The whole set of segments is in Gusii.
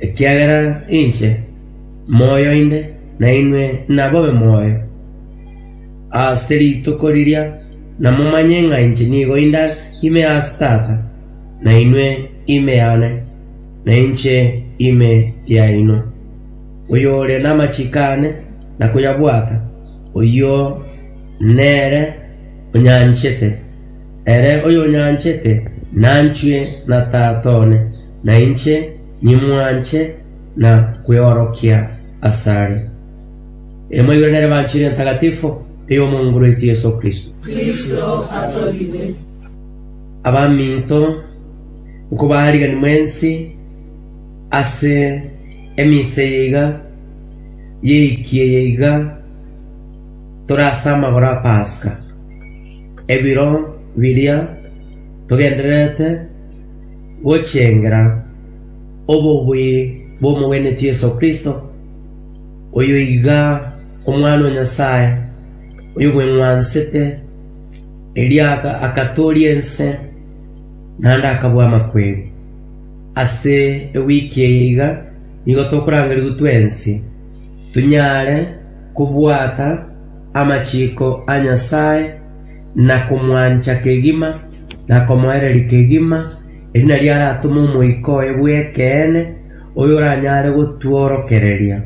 Ekiagera inche moyo inde, nainwe nabobe moyo ase rituko riria, na momanye ng'a inche nigo inde ime ase Tata, na inwe ime yane, na inche ime yaino. Oyore namachiko aane na koyabwata, oyio nere onyanchete, ere oyonyanchete nanchwe na Tata one. na inche nimwanche na kweorokia asare. Ere moigoranere b'Enchili Entangatifo ey'Omong'u rweito Yeso Kristo. Abaminto, nkobaarigani mwensi ase eminsa eye iga y'eiki eye iga tore ase amagoro a Paska, ebiro biria togendererete, gochengera obobui bw'omogeneti Yeso Kristo, oyoiga Omwana o Nyasae, oyobweng'wansete, erio agatooria ense, naende akabua amakweri. Ase ewiki eye iga nigo tokorangerigwa twensi, tonyare kobwata amachiko a Nyasae, na komwancha kegima, na komoereria kegima, erio nario aratome Omoika oye bw'ekeene, oyoranyare gotworokereria.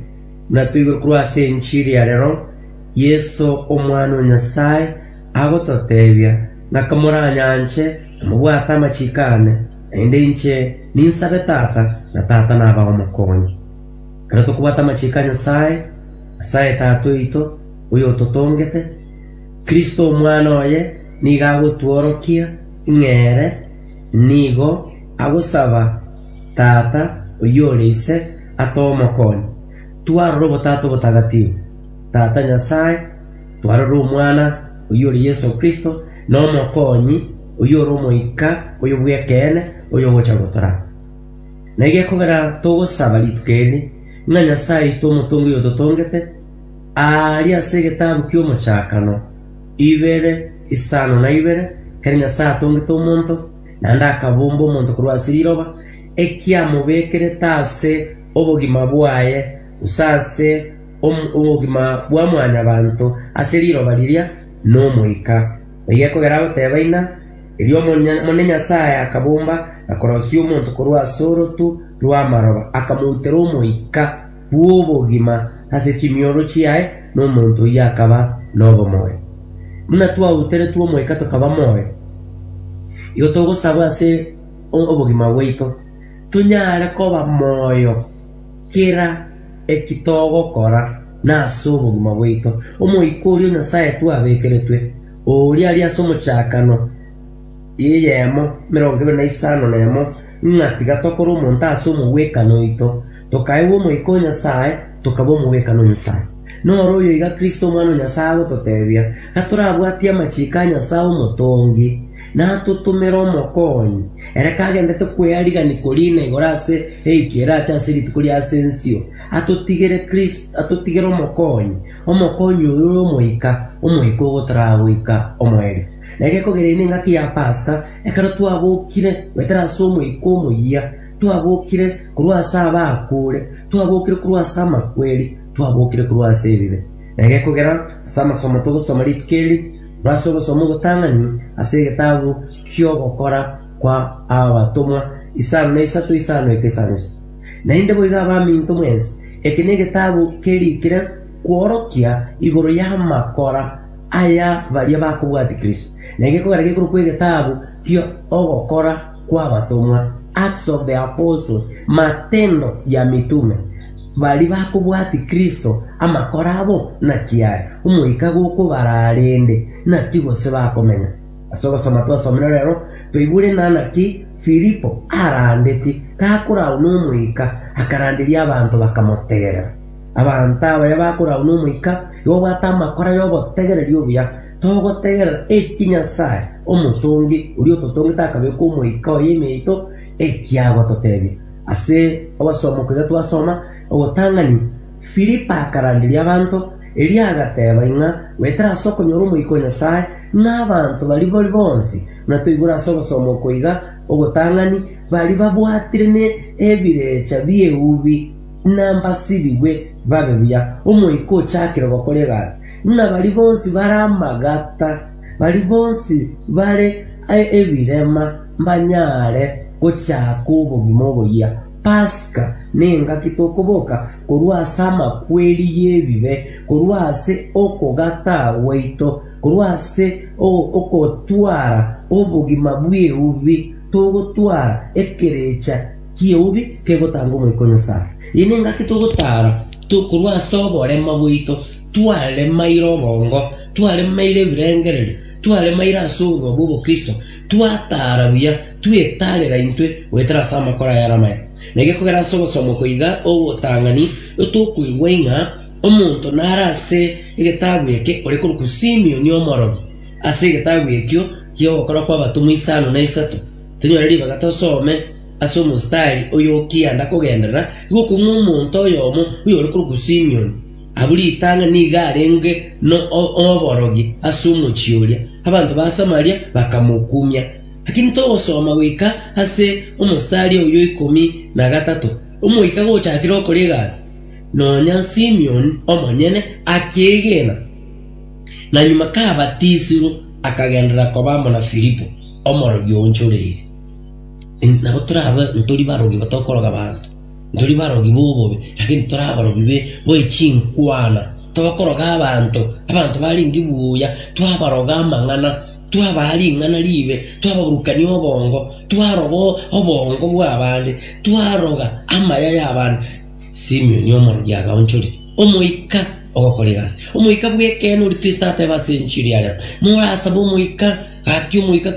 Buna toigure korwa ase enchiri ya rero, Yeso, Omwana o Nyasae, agototeebia, Ng'ake moranyanche, na mobwate amachiko aane, naende inche ninsabe Tata, na Tata nabao omokonyi. Ekero tokobwata amachiko a Nyasae, Nyasae Tata oito, oyototongete, Kristo Omwana oye nigo agotworokia ng'a ere nigo agosaba Tata oyore Ise atoe Omokonyi. Twarora Obotaata Obotagatifu, Tata Nyasae, twarora Omwana oyore Yeso Kristo, na Omokonyi oyore Omoika oyo bw'ekeene oyogocha gotoraba. Na ege ekobera togosaba rituko eri, ng'a Nyasae aite omotongi oyototongete, Aaria ase egetabu ki'Omochakano, ibere, isano na ibere, ekero Nyasae atongete omonto, naende akabomba omonto korwa ase riroba, ekiamobekerete ase obogima bwaye, gose ase obogima bwa mwanyabanto ase riroba riria, n'Omoika. Naende ekogera agoteba Ina, erio Omonene Nyasae akabomba na korosia omonto korwa ase orotu rw'amaroba, akamoutera Omoika. bw'obogima ase chimioro chiaye nomonto oyio akaba nobomoyo. Buna twauteretwe Omoika tokaba moyo, igo togosaba ase obogima bwaito tonyare koba moyo kera eki togokora na ase obogima bwaito. Omoika oria o Nyasaye twabekeretwe, oria aria ase omochakano y'eyemo emerongo ebere na isano nemo, ng'a tiga tokore omonto ase omogwekano oito, tokaegwa Omoika o Nyasae, tokaba omogwekano o Nyasae. Noro oyo iga Kristo Omwana o Nyasae agototebia, gatorabwatie amachiko a Nyasae Omotongi, natotomere omokonyi, ere kagendete kwearigania koria ina igoro ase eikio erache ase rituko ria ase ensio, atotigere Kristo, atotigere omokonyi, omokonyi oyo ore Omoika, Omoika ogotoraa goika omoerio. Na egekogera ime engaki ya Paska, ekero twabokire goetera ase Omoika omoyia, Twabokire korwa ase abaakure, twabokire korwa ase amakweri, twabokire korwa ase ebibe. Na egekogera ase amasomo togosoma rituko eri, torase ogosoma ogotang'ani ase egetabu ki'ogokora kwa abatomwa isano na isato isano eke isano isato. Naende boigo abaminto mwensi, eke negetabu kerikire kworokia igoro y'amakora aya baria bakobwati Kristo, na egekogera gekorokwa egetabu ki'ogokora kw'abatomwa, Acts of the Apostles, Matendo ya Mitume, baria bakobwatia Kristo, amakoro abo, na chiaye, omoika gokobara arende, naki gose bakomenya. Ase ogosoma twasomire rero, toigure ng'a naki Filipo arandetie gakoragwa n'Omoika, akaranderia abanto bakamotegerera. Abanto abaya bakoragwa n'Omoika nigo obwate amakoro y'obotegereri obuya. Togotegerera eki Nyasae, Omotongi oria ototongete akabeka Omoika oye ime yaito, eki agototebia. Ase ogosoma okoiga twasoma ogotang'ani, Filipo akaranderia abanto, erio agateba ing'a goetera ase okonyora Omoika o Nyasae n'abanto baria bori bonsi. Buna toigure ase ogosoma okoiga ogotang'ani, baria babwatire ne ebirecha bi'eubi nambasibigwe babe buya, Omoika ochakire gokora egasi. Buna baria bonsi bare amagata, baria bonsi bare ebirema mbanyare gochaka obogima oboyia. Paska nengaki tokoboka korwa ase amakweri y'ebibe, korwa ase okogata gwaito, korwa ase ogotwara obogima bw'eubi togotwara ekerecha ki'eubi kegotanga Omoika o Nyasae. Eye nengaki togotara korwa ase oborema bwaito. Twaremaire obongo, twaremaire ebirengererio, twaremaire ase oborua bw'obokristo, twataara buya, twetaarera intwe goetera ase amakoro ayare amaya. Na gekogera ase ogosoma oko iga ogotang'ani, tokoigwa ng'a omonto nare ase egetabu eke ore korokwa Simioni Omorori. Ase egetabu ekio ki'Ogokora kw'Abatomwa isano na isato, tonyore ribaga tosome ase omostari oyokianda kogenderera iga okong'u omonto oyomo oyore korokwa Simioni, Abwo ritang'ani nigo arenge noborogi ase omochie oria, abanto ba Samaria bakamokumia. Lakini togosoma goika ase omosari oyo ikomi na gatato, omoika gochakire okora egasi, nonya Simion omonyene akeegena, na nyuma kabatisirwe, akagenderera koba amo na Filipo, omorogi oonchoreire. Nabo torabe ntori barogi, tokoroga abanto. Ntori barogi b'obobe, lakini tore abarogi be bwe chinkwana. Tokoroga abanto, abanto barenge buya, twabaroga amang'ana, twabaa ring'ana riibe, twababurukania obongo, twaroga obongo bw'abande, twaroga amaya y'abande. Simioni omorogi agaonchoria omoika ogokora egasi. Omoika bw'ekeene ori Kristo ateba ase enchili yarema, Morasabe omoika, Gaki omoika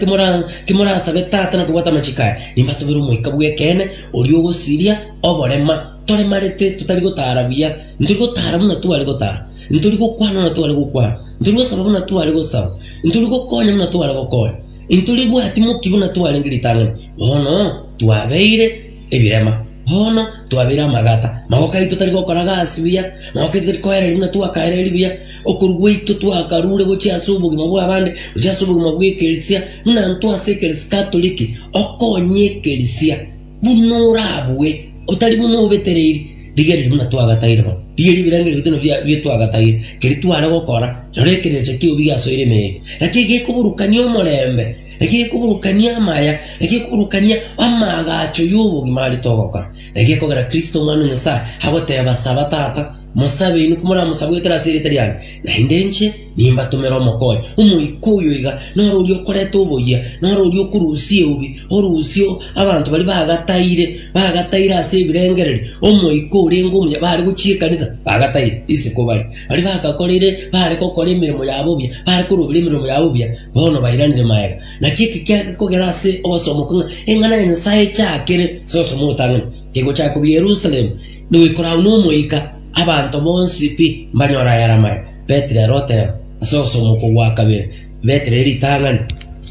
kemorasabe Tata na kobwata amachiko aya, nimbatobere Omoika bw'ekeene, oria ogosiria oborema. Toremarete, totari gotara buya, ntori gotara buna tware gotara, ntori gokwana buna tware gokwana, ntori gosaba buna tware gosaba, ntori gokonya buna tware gokonya, ntori bwati moki buna twarenge ritang'ani. Bono twabeire ebirema, bono twabeire amagata, magoko aito tari gokora gasi buya, magoko aito tari koereria buna twakaereiri buya, Okorua gwaito twakarure gochia ase obogima bw'abande gochia ase obogima bw'ekeresia, buna intwe ase ekeresia Katoliki, okonye ekeresia buna orabue, otari buna obetereiri. Rigereria buna twagataire bono. Rigereria ebirengererio bito nabio bia twagataire, keria tware gokora, rora ekerecha ki'obobi giasoire emegeka. Naki egekoburukania omorembe, naki egekoburukania amaya, naki egekoburukania amaagacho y'obogima aria togokora. Naki ekogera Kristo Omwana o Nyasae agoteeba, Saba, Tata, Mosabe inwe komoramosabwekere ase erieta riane, naende inche nimbatomere omokonyi. Omoika oyo iga noro oria okoreta oboyia, noro oria okorusia eubi, orusia abanto baria bagataire, bagataire ase ebirengererio, omoika orenge omuya bare gochia ekanisa, bagataire. Isiko bare, baria bagakoreire bare gokora emeremo yabo buya, bare korobera emeremo yabo buya, bono bairanire magega. Naki eke kiage kogera ase ogosomoka ng'a eng'ana ya Nyasae echakere ase obosamotanani, kegochaka korwa Yerusalemu, Noikore agwo n'Omoika, abanto bonsi pi mbanyore ayare amaya. Petero ere oteeba, Ase okomoko gwa kabere, Petero ere ritang'ani,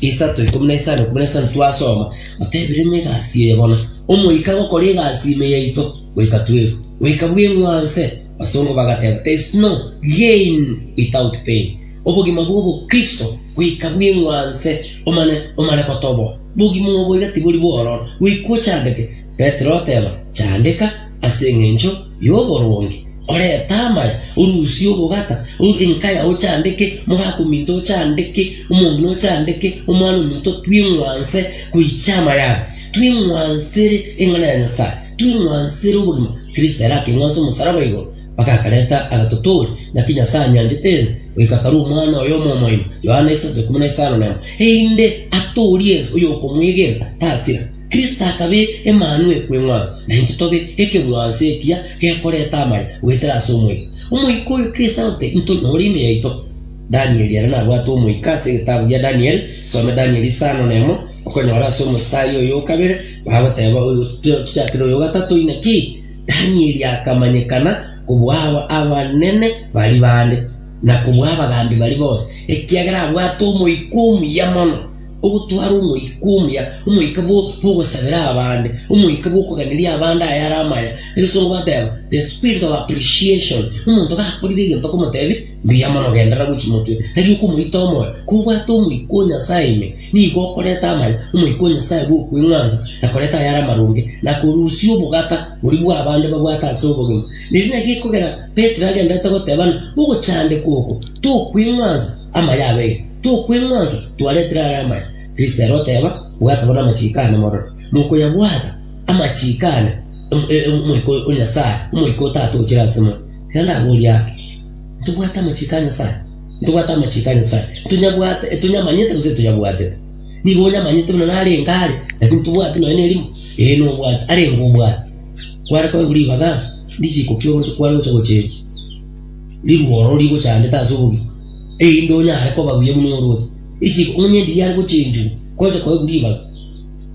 isato, ikomi na isano, ikomi na isano twasoma, Otebiremo egasi eye bono, Omoika agokora egasi ime yaito goika twerwe, goika bweng'wanse. Abasongo bagateeba, There is no gain without pain, obogima bw'obokristo goika bweng'wanse, omane omare gotoboa. Bogima obo iga tibori bwororo, goika ochandeke. Petero oteba, Chandeka, ase engencho y'oboronge oreta amaya, orusie obogata, enka yao chandeke, omogaka ominto ochandeke, omong'ina ochandeke, omwana ominto twing'wanse goichia amayare, twing'wansere eng'ana ya Nyasae, twing'wansere obogima. Kristo ere akeng'wansa omosaraba igoro, mpaka akareta agatotoria, naki Nyasae anyanchete ense, goika akarua Omwana oye omwomoima, Yohana 3:15, erinde atoorie ense, oyokomoegena tasira. Kristo akabe Emanu ekweng'wansa, naintwe tobe ekeng'wanso ekiya gekoreta amaya goetera ase Omoika. Omoika oyo Kristo agote intwe nore ime yaito. Danieli ere nabwate Omoika ase egetabu gia Danieli, some Danieli isano na emo, okonyora ase omositari oyo o kabere bagoteba oyo tochakire oyo o gatato, Inaki Danieli akamanyekana kobua abanene baria bande, na kobua abagambi baria bonsi, ekiagera abwate Omoika omuya mono. Ogotwara omoika omuya, omoika bw'ogosabera abande, omoika bw'okoganeria abande ayare amaya, egesongo bateba, the spirit of appreciation. Omonto gakorire egento okomotebi, Mbuya mono, genderera gochia motwe. Tari okomoita omoyo. Kobwate omoika o Nyasae ime, nigo okoreta amaya, omoika o Nyasae bw'okweng'wansa, na koreta ayare amaronge, na korusia obogata boria bw'abande babwate ase obogima. Erio naki ekogera Petero agenderete goteba ng'a ogochandekwa oko tokweng'wansa amaya abeire. Tokweng'wanso twaretire aya amaya. Listera oteba, Bwataba namachiiko ane mororo. Mokoyabwata amachiiko ane Omoika o Nyasae, Omoika o Tata ochire asemo. Tiga ndaborie ake. Ntobwate amachiiko a Nyasae? Ntobwate amachiiko a Nyasae? Ntonyabwate, etonyamanyete gose etonyabwatete? Nigo onyamanyete buna narenge are, lakini ntobwati nonya nerimo. Ee, nobwate, arenge obwate. Kware koba ribaga richiiko ki oroche kware gocha gocha erio? Riruoro rigochandete ase obogima. Erinde onyare koba buya buna orwoti, richiko omenye endigiya are gochenchigwa, gocha koegwa ribaga.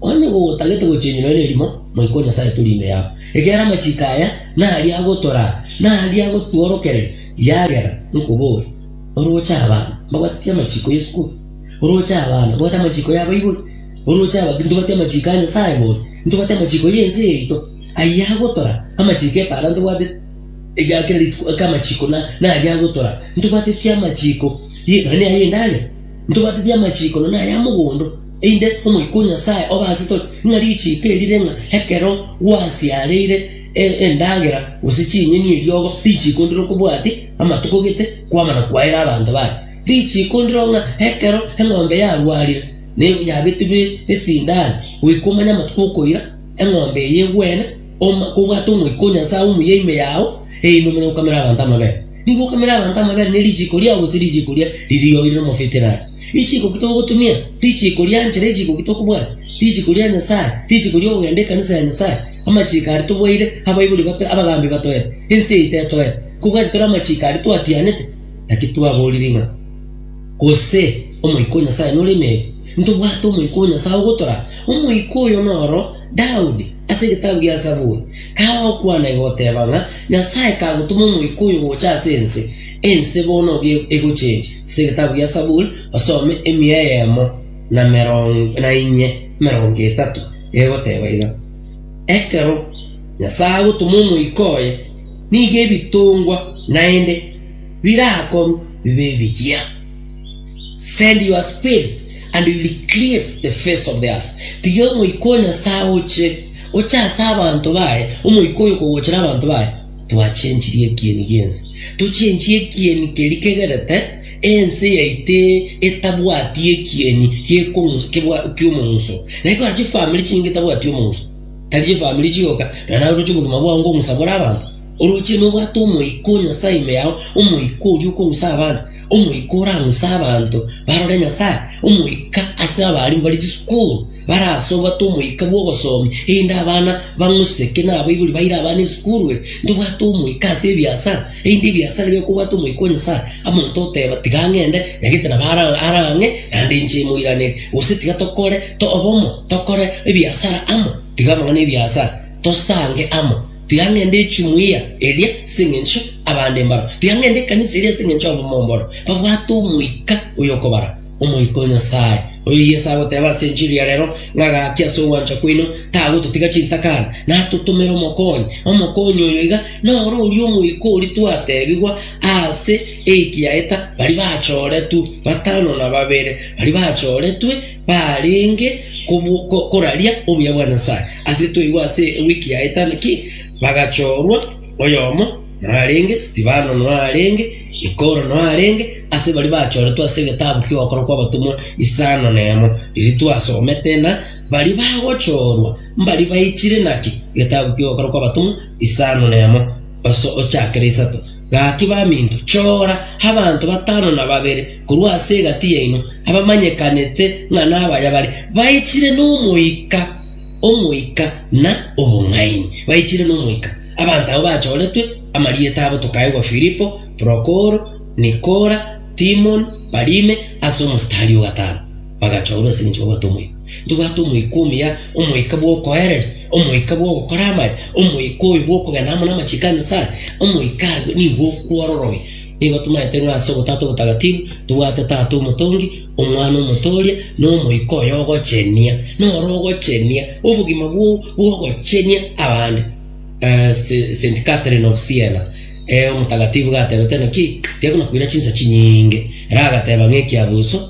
Onye gotagete gochenchwa nonya nerimo, Moika o Nyasae tori ime yabo. Ekiagera amachiko aya naria agotoraa, na aria agotworokereria, riagera nkobore, Oroche abana, mbabatie amachiko y'esukuru, oroche abana, mbabatie amachiko ya Baibori, oroche abakiri, ntobatie amachiko a Nyasae bori, ntobatie amachiko y'ense yaito. Ayio agotoraa, amachiko epara ntobwateti. Ekiagera kera rituko eke amachiko na naye agotora, ntobwateti amachiko ye nonye naye endagera, ntobwateti amachiko nonye naye amogondo, einde omoika o Nyasaye obe ase tore, ng'a richiko eri rire ng'a ekero gwasiareire e- endagera gose chinyeni eriogo, richiko ndire okobwati amatuko gete kwamana kwaera abanto baye. Richiko ndiro ng'a ekero eng'ombe yarwarire ne yabetigwe esindani, goika omanye amatuko okoira eng'ombe eye egwene, Okobwata Omoika o Nyasae omuya ime yao, erio nomanye gokamera abanto amabere. Nigo okamera abanto amabere ne richiiko riao gose richiiko ria riria oire nomofia etirare. Richiiko ki togotumia? Richiiko ria nchera, richiiko ki tokobwata? Richiiko ria Nyasae, richiiko ri'okogenda ekanisa ya Nyasae, amachiiko aria tobwaire, abaibori bato, abagaambi batoete. Ense eye tetoete. Kobwati tore amachiiko aria twatianete, naki twaborire ng'a, Gose Omoika o Nyasae nore ime yaito. Ntobwate Omoika o Nyasae ogotoraa. Omoika oyo noro Daudi, ase egetabu gia Zaburi, kagokwana egoteeba ng'a Nyasae kagotoma Omoika oyo gocha ase ense, ense bono ogie egochenche. Ase egetabu gia Zaburi osome emia eyemo na merongo na inye emerongo etato, egoteeba iga, Ekero Nyasae agotoma Omoika oye, nigo ebitongwa naende birakorwa bibe ebichia. Send your Spirit. And will create the face of the earth, tiga Omoika o Nyasae oche, oche ase abanto baye, Omoika oyo kogochera abanto baye. Twachenchirie ekieni gi'ense, tochenchie ekieni keria kegerete ense yaito etabwati ekieni gekong'u- kebwa- ki'omong'uso. Na ekero chifamiri chinyinge chitabwati omong'uso, tari chifamiri chioka, na naye oroche obogima bwao ngokong'usa bore abanto. Oroche nobwate Omoika o Nyasae ime yao, Omoika oria okong'usa abande. Omoika oraamuse abanto barore Nyasae, Omoika ase abaria mbare chisukuru, bare ase obwate omoika bw'obosomi, erinde abana bang'use ki nabaibori baire abana esukuru eye. Ntobwate omoika ase ebiasara, erinde ebiasara bire kobwate omoika o Nyasae. Omonto oteeba, Tiga ng'ende, nyagete nabo ara ara ang'e, naende inche moiranerie, gose Tiga tokore obomo, tokore ebiasara amo, tiga nonya ebiasara, tosange amo. Tiga ng'ende chimuyia eria ase engencho abande mbaro, tiga ng'ende ekanisa eria ase engencho abamao mbaro babwate Omoika oyokobara, Omoika o Nyasae, oyo Yeso agoteba ase enchili ya rero, ng'a gaki ase ogwancha kwaino tagototiga chintakana, natotomere Omokonyi. Omokonyi oyo iga noro oria Omoika oria twatebigwa aase ekiaeta baria bachoretwe, batano na babere baria bachoretwe, Barenge koraria obuya bwa Nyasae. Ase twaigwa ase ewiki yaeta naki bagachorwa, oyomo narenge, Stefano narenge, Nikoro narenge, ase baria bachoretwe ase egetabu ki'ogokora kw'abatomwa isano nemo, riria twasomete, na baria bagochorwa mbaria baichire naki egetabu ki'ogokora kw'abatomwa isano nemo, ochakere isato. Gaki baminto, chora abanto batano na babere korwa ase egati yaino, abamanyekanete ng'a nabaya bare, baichire n'Omoika, Omoika, na obong'aini. Baichire n'Omoika. Abanto abwo bachoretwe amarieta abo tokaegwa Filipo, Prokoro, Nikora, Timoni, Parime, ase omositari o gatano. Bagachoorwa ase eng'encho babwate Omoika. Ntobwate Omoika omuya, Omoika bw'okoereria, Omoika bw'ogokora amaya, Omoika oyo bw'okogenda amo namachiko a Nyasae. Omoika aye nigo okwororogia. Nigo tomaete ng'a ase Obotaata Obotagatifu tobwate Tata Omotongi, Omwana Omotooria, na Omoika oyo ogochenia. Noro ogochenia, obogima bwo bw'ogochenia abande. Eh, Se- Saint Catherine of Siena, eh, omotagatifu gatebete naki, tiakona koira chinsa chinyinge. Ere agateba ng'a ekiabuso,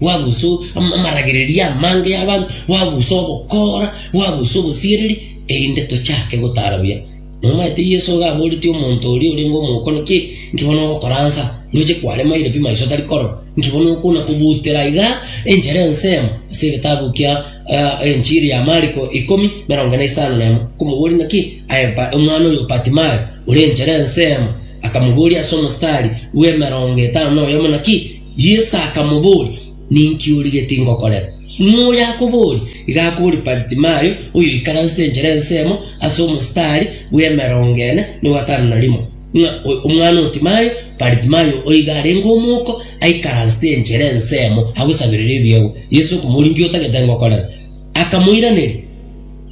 gwagusa amaragereria amange y'abanto, gwagusa obokoora, gwagusa obosiereri, erinde tochake gotaara buya. Nomanyete Yeso iga aboretie omonto oria orenge omokone, ki inki bono ogokora anse aa? Ndoche kwaremaire pi maiso tari korora? Inki bono okona kobutera iga enchera ensemo? Ase egetabu kia Enchiri ya Mariko ikomi, merongo ene isano nemo, komoboria ng'a ki aye omwana oyo o Batimayo, ore enchera ensemo, akamoboria ase omostari bw'emerongo etano noyomo, ng'a ki Yeso akamoboria, Ninki origetie ngokorere? Ng'o oyakoboorie? Iga akobooria Baritimayo, oyoikare ase enchera ensemo ase omositari bw'emerongo ene na gatano na rimo, ng'a omwana o Timayo, Baritimayo, oiga arenge omouko, aikaransete enchera ensemo agosaberere ebiegwa. Yeso okomoboria, Inki otagete ngokorere? Akamoiraneria,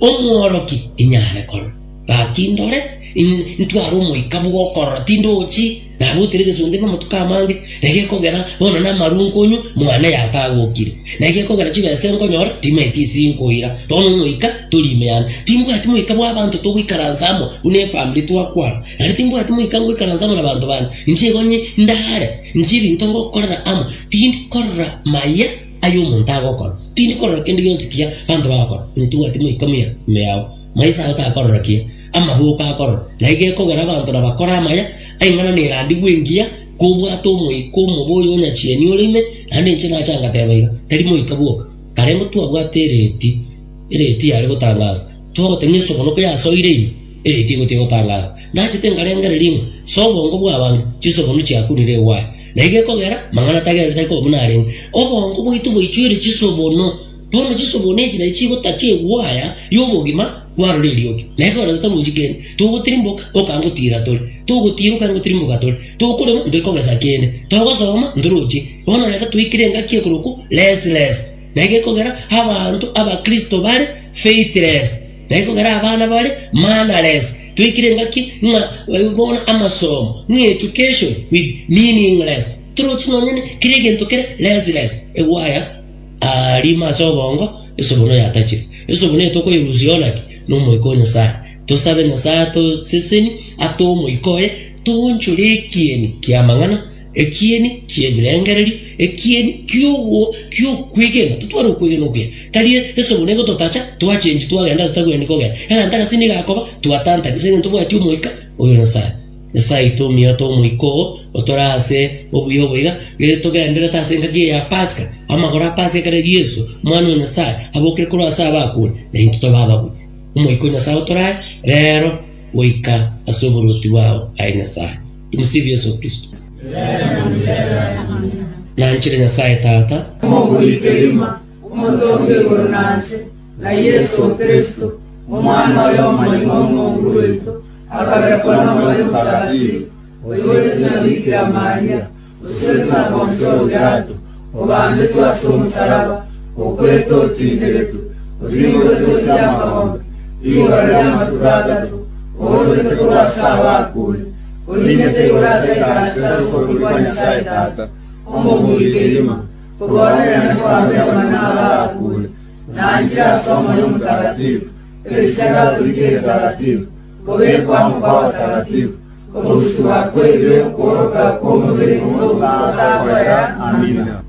Omworokia, inyare korora. Gaki ndore, intware omoika bw'okorora, tindochi. Nagoitire egesonte na amatuko amange, na gekogera bono namaru nkonywa, mwane yatagokire. Na gekogera chibesa nkonyora, timaeti ase inkoira. Bono ngoika tori ime yane. Timbwati moika bw'abanto togoikaransa amo buna efamiri twakwana. Naende timbwati moika ngoikaransa amo nabanto bane. Inche onye ndaare, inche ebinto ngokorera amo, tindi korora maya aya omonto agokora. Tindi korora kende gionsi kia banto bagokora. Onye tibwati moika muya ime yao, maiso ago takorora kiya. Amaboko akorora, na igo ekogera abanto na bakore amaya, aing'ana nerandigwe engiya, kobwate omoika omobe oyo onyachieni ore ime, naende inche nache ngateba iga, Tari moika bwoka, karende twabwate ereeti, ereeti yare gotangaasa, twagoteba ng'a esogoroko yasoire ime, ereeti ego tegotangaasa. Nachete nkarengereria ng'a ase obongo bw'abanto chisogoro chiakunire egwaya, na igo ekogera mang'ana tagereti tari koba buna arenge. Obongo bwaito bwaichoire chisobono. Bono chisobuo na enchera chigota chi'egwaya y'obogima bwarora eriogi, na ekero toruchi kende, togotirimboka okangotiira tore, togotiira okangotirimboka tore, tokorema ntoikogesa kende, togosoma ntorochi. Bono reta toikire engaki ekorokwo restless, na egekogera abanto abakristo bare faithless, na egekogera abana bare mannerless. Toikire engaki ng'a bono amasomo ng'a education with meaningless, torochi nonye kera egento kere restless, egwaya. Aa, rimo ase obongo esubuna oyatachire. Esubuna eye tokoyerusia ona ki? N'Omoika o Nyasae. Tosabe Nyasae atoseseni ate Omoika oye, toonchore ekieni ki'amang'ana, ekieni ki'ebirengererio, ekieni ki'ogo ki'okwegena. Totware okwegena okuya. Tari esubuna egototacha twachenchi twagenda ase tagwenereti kogenda, egento agasini gakoba twatantari ase eng'encho tobwati Omoika oyo Nyasae. Nyasae aite omuyata omoika oo otore ase obuya obo iga, riria togendererete ase engaki eye ya Paska, amagoro a Paska ekero Yeso, Omwana o Nyasae, abokire korwa ase abakure, na intwe tobe ababuya. Omoika o Nyasae otore aye reero goika ase oborwoti bwao, aye Nyasae. Tumsifu Yesu Kristo. Nanchire Nyasae Tata, Omobui kegima, Omotongi igoro na nse, na Yeso Kristo, Omwana oye omoyio na omobui oito, Agabekwa n'Omoyo Omotakatifu, oyoetetwe na Bikira Maria, osiretwe na Ponsio Pilato, obambetwe ase omosaraba, okwetwa, otindegetwe, otiboretwe ase amabomba, rigoro ri'amatuko atato, ouretwe korwa ase abakure, orinete igoro ase ekanisa ase obotuki bwa Nyasae Tata, omobui kegima, koboonererania kw'abaigwa na abakure, na nchire ase Omoyo Omotakatifu, Erisia Katoliki Eretaratibu, Kobekwa amo kwa Abataratibu, Ogosusigwa kw'ebibe, Okworoka kw'omobere nigo gotakoera. Amina.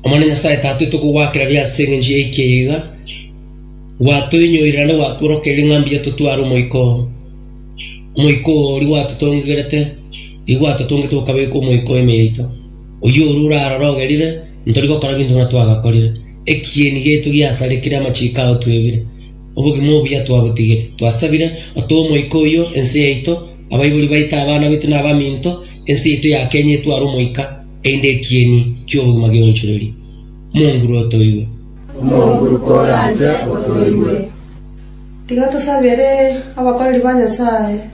Omwana Nyasae Tata oito kogwakera bia ase eng'encho ya ekiya iga, gwatoinyorire naende gwatworokereria ng'a mbuya totware Omoika oo. Omoika oo oria gwatotongegerete, nigo gwatotongete gokabeka omoika o ime yaito. Oyio oria orarorogerire, ntori gokora binto buna twagakorire. Ekieni giaito giasarikire, amachiko ao twebire. Obogima obuya twabotigire, twasabire, otoe Omoika oyio ense yaito, abaibori baito, abana baito, na abaminto, ense yaito ya Kenya etware Omoika, erinde ekieni ki'obogima gionchorerie. Omonguru otoigwe. Omonguru koranche otoigwe. Tiga tosabere abakoreri ba Nyasae.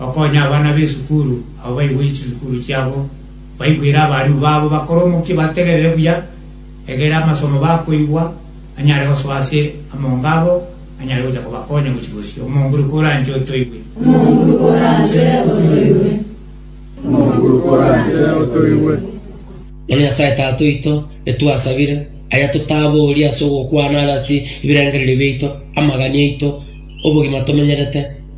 Okonye abana b'esukuru abwo baiborie chisukuru chiabo, baigwere abarimu babo, bakore omokia, bategerere buya, egere amasomo bakoigwa anyare gosoa ase amongo abo, anyare gocha kobakonya gochia bosio. Omonguru koranche otoigwe. Omonguru koranche otoigwe. Omonguru koranche otoigwe. Ng'a Nyasae Tata oito, etwasabire aya totaboria ase ogokwana are ase ebirengererio biaito, amagani aito, obogima tomenyerete,